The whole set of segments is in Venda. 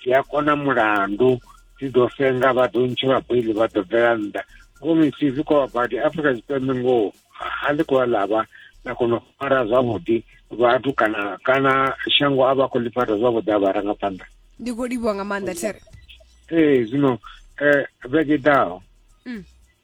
ndi a kona mulandu ndi ḓo senga vha ḓo ntshe vha beli vha ḓo bvela nnḓa ngomi fhedzi kwa vhabadi afrika tshipembe ngoho ha ḽi khou ḽavha na kona u fara zwavhuḓi vhathu kana kana shango a vha khou ḽi fara zwavhuḓi a vharangaphanḓa ndi khou livhuwa nga maanḓa there ee zwino um vhege ḓaho mm.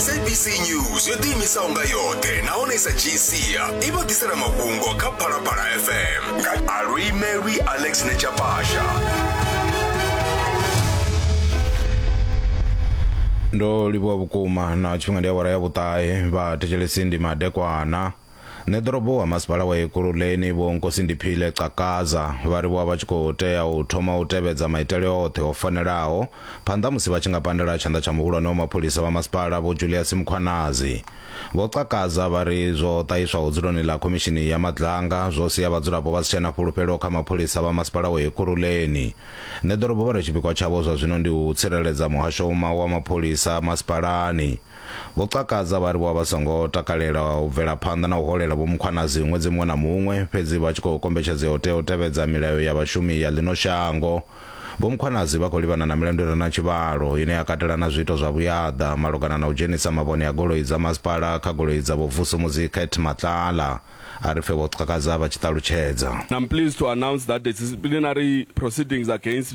sabc news yo ḓiimisaho nga yoṱhe nahone sa gcia i vha ḓisela mafhungo kha phalaphala fm nga aluimelwi alex nechapasha ndo livhuwa vhukuma na tshifhinga ndi awara ya vhuṱahe vha thetshelesi ndi madekwana Neḓorobo wa masipala wa Ekurhuleni Vho Nkosi Ndiphile Cakaza vha ri vho vha vha tshi khou tea u thoma u tevhedza maitele oṱhe o fanelaho phanḓa musi vha tshi nga pandela tshanḓa tsha muhulwane wa mapholisa vha masipala Vho Julias Mkhwanazi. Vho Cakaza vha ri zwo ṱahiswaho dzuloni ḽa khomishini ya Madlanga zwo sia vhadzulapo vha si tshena fhulufhelo kha mapholisa vha masipala wa Ekurhuleni Neḓorobo vha ri tshipikwa tshavho zwa zwino ndi u tsireledza muhasho wa mapholisa masipalani Vho Xhakaza vha ri vho vha vha songo takalela u bvela phanḓa na u holela Vho Mkhwanazi ṅwedzi muṅwe na muṅwe, fhedzi vha tshi khou kombetshedzea u tea u tevhedza milayo ya vhashumi ya ḽino shango. Vho Mkhwanazi vha khou livhana na milandu i re na tshivhalo, ine ya katela na zwiito zwa vhuyaḓa malugana na u dzhenisa mavhone a goloi dza masipala kha goloi dza Vho Vusumuzi Kate Matlala a ri pfe Vho Xhakaza vha tshi ṱalutshedza. I'm pleased to announce that the disciplinary proceedings against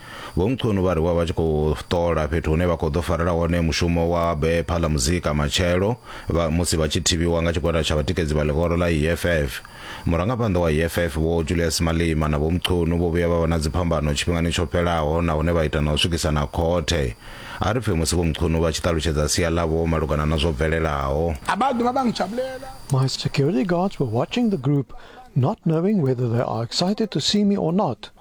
Vho Mchunu vha ri vha vha tshi khou ṱola fhethu hune vha khou ḓo farela hone mushumo wa be phala muzika matshelo vha musi vha tshi thivhiwa nga tshigwada tsha vhatikedzi vha ḽihoro ḽa EFF. Murangaphanḓa wa EFF Vho Julius Malema na Vho Mchunu vho vhuya vha vha na dziphambano tshifhingani tsho fhelaho na hune vha ita na u swikisana khothe. A ri pfe musi Vho Mchunu vha tshi ṱalutshedza sia ḽavho malugana na zwo bvelelaho. My security guards were watching the group not knowing whether they are excited to see me or not.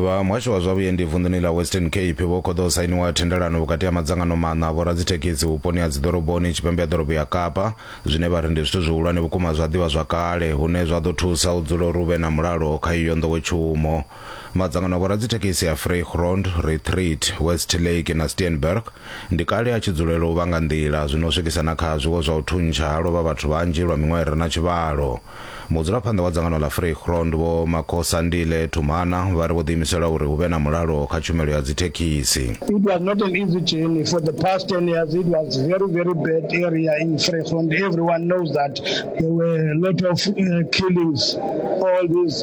vha muhasho wa zwa vhuendi vunḓuni ḽa western cape vho khoḓa u sainiwa thendelano vhukati ha madzangano maṋa a vhoradzithekhisi vhuponi ha dziḓoroboni tshipembe ya ḓorobo ya kapa zwine vha ri ndi zwithu zwihulwane vhukuma zwa ḓivha zwakale hune zwa ḓo thusa u dzula uri hu vhe na mulalo kha iyo nḓowetshumo Madzangano a vhoradzithekhisi a Vrygrond, Retreat, Westlake na Steenberg ndi kale a tshi dzulela u vhanga nḓila, zwi no swikisa na kha zwiwo zwa u thuntsha ha lovha vhathu vhanzhi lwa miṅwaha i re na tshivhalo. Mudzulaphanḓa wa dzangano ḽa Vrygrond, Vho Makosandile Thumana, vha ri vho ḓiimisela uri hu vhe na mulalo kha tshumelo ya dzithekhisi. It was not an easy journey for the past 10 years it was very very bad area in Vrygrond everyone knows that there were a lot of uh, killings all these